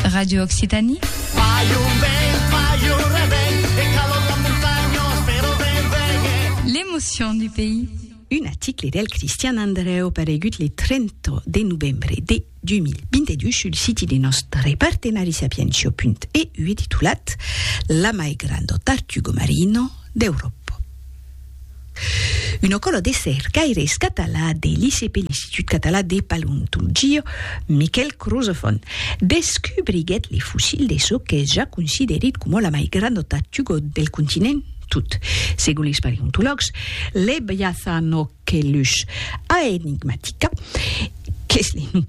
Radio Occitanie. L'emotion du pays. Un article del Cristian Andreu paregut le 30 de novembre de 2022 sul siti de nostre partenari sapientia.eu e titulat La mai granda tartuga marina d'Euròpa. Una cola de cercaires català de l'ICP, l'Institut Català de Paleontolgia, Miquel Crozafon, descubriguèt le fossil de çò qu'es ja considerit coma la mai granda tartuga del continent, tot segon les paleontològs, Lebiathanochelys aenigmatica, qu'es le nom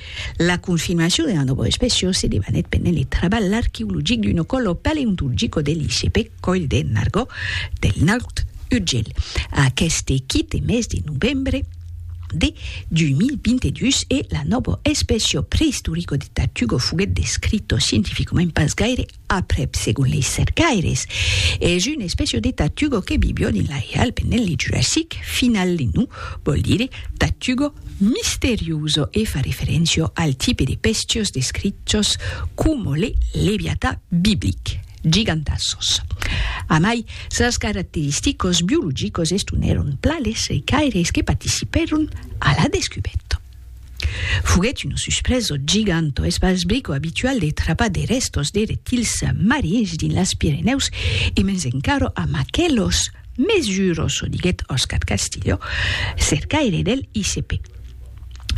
La confirmacion dera nòva especiò se debanèt pendent le trabalh arqueologic d'un ocollo paleontulgico de l'ICP Còil de Nargó del Naut Urgell. Aqueste quite mes de novembre de 2022 e la nòva especiò preistorico de Tartugo foguèt descrito scientificament pas gaire Aprèp, segon lei cercaires, es un espècia de tatugo que bibió dins la hial pendent li Jurassic final. Le nom vòl dire tatugo misterioso e fa referéncia al tipe de pestios descrichos coma le leviatà biblic, gigantassos. Amai sas caracteristicos biologicos estonèron plan les cercaires que participèron a la descubèrta. Foguèt una susprèso giganta eth basbrico abitual de trapar de rèstos de reptils marins dins las Pirenèus e mens encara amb aquelos mès juros, o diguèt Oscar Castillo, cercaire del ICP.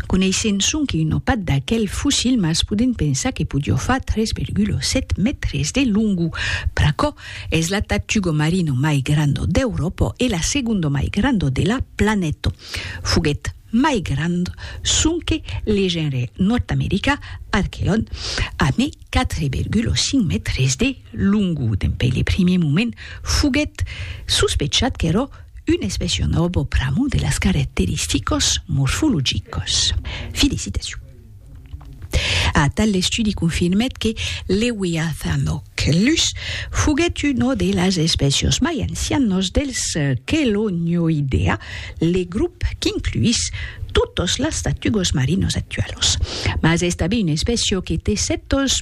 Coneissent sonque una part d'aquel fossil mas podent pensar que podió far 3,7 mètres de longor, pr'aquò es la tartuga marina mai granda d'Euròpa e la segonda mai granda de la planeta. Foguèt mai grand sonque le genre nòrd-americà Archelon, a mai 4,5 mètres de longo. Dempèi le primier moment foguèt sospechat qu'èra un espècia nòva pr'amor de las caracteristicas morfologicas. Felicitacion! Atal l'estudi confirmèt que Lewiathanòc lus foguèt una de las espècias mai ancianas dels Chelonioidea, le grop qu'incluís totas las tartugas marinas actualas. Mas es tanben una espècia que té sèptas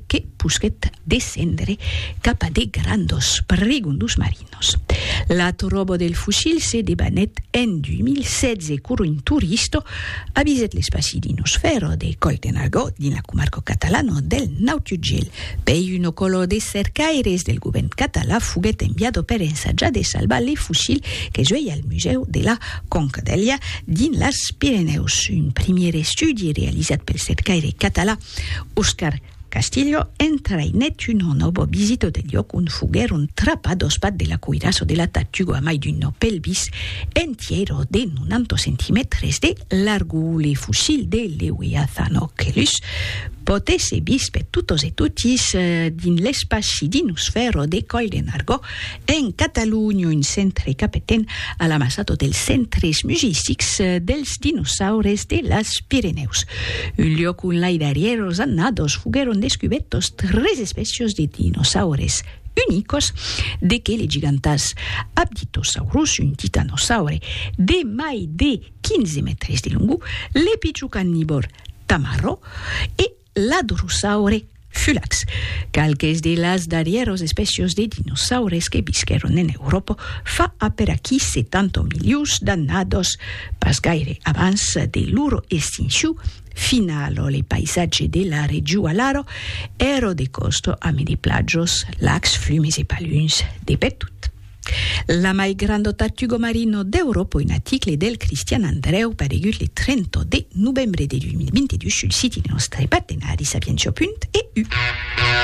que posquèt descendre cap a de grandos prigondos marinos. L'atoròbo del fusil se debanèt en 2016 quoro un turisto avisèt l'espaci d'un osfèro de Coll de Nargó dins la comarca catalana del Nautiugèl. Pei un ocolor de cercaires del govèrn català foguèt enviado per ensajar de salvar le fusil que suei al Musèu de la Concdèlia dins las Pirenèus. Un primièr estudi realizat pel cercaire català Oscar Castillo entraïnèt un òno bo visito del lloc ont foguèron trapat dos pat de la coirassa o de la tatuga mai d'un nò pelvis entièr o de 90 centimètres de largor. Le fossil de Lewiathanochelys pòt èsser vist per totes e totis dins l'espaci dins lo sfèr o de Coillenargo, En Catalonha, un centre capetent a l'amassado dels centres musissics dels dinosaures de las Pirenèus. Un liòc ont lai darrièros annados foguèron descubètos tres espècias de dinosaures unicos de que le gigantàs Apditosaurus, un titanosaure de mai de 15 mètres de longor, le pichon carnivòr Tamarro e L'adrosaure fulax, qualques de las darrièros espècios de dinosaures que visquèron en Euròpa fa aperaquí 70 milions d'annados, pas gaire abans de lor extincion finalo le paisatge de la region alaro èro de còsto ame de plajos, lacs, flumes e paluns de pertot. La mai grando tartugo marino d'Europo un aticle del Cristian Andreu paregut le 30 de novembre de 2022 sul siti de nòstre partenari Sapientiapunt EU.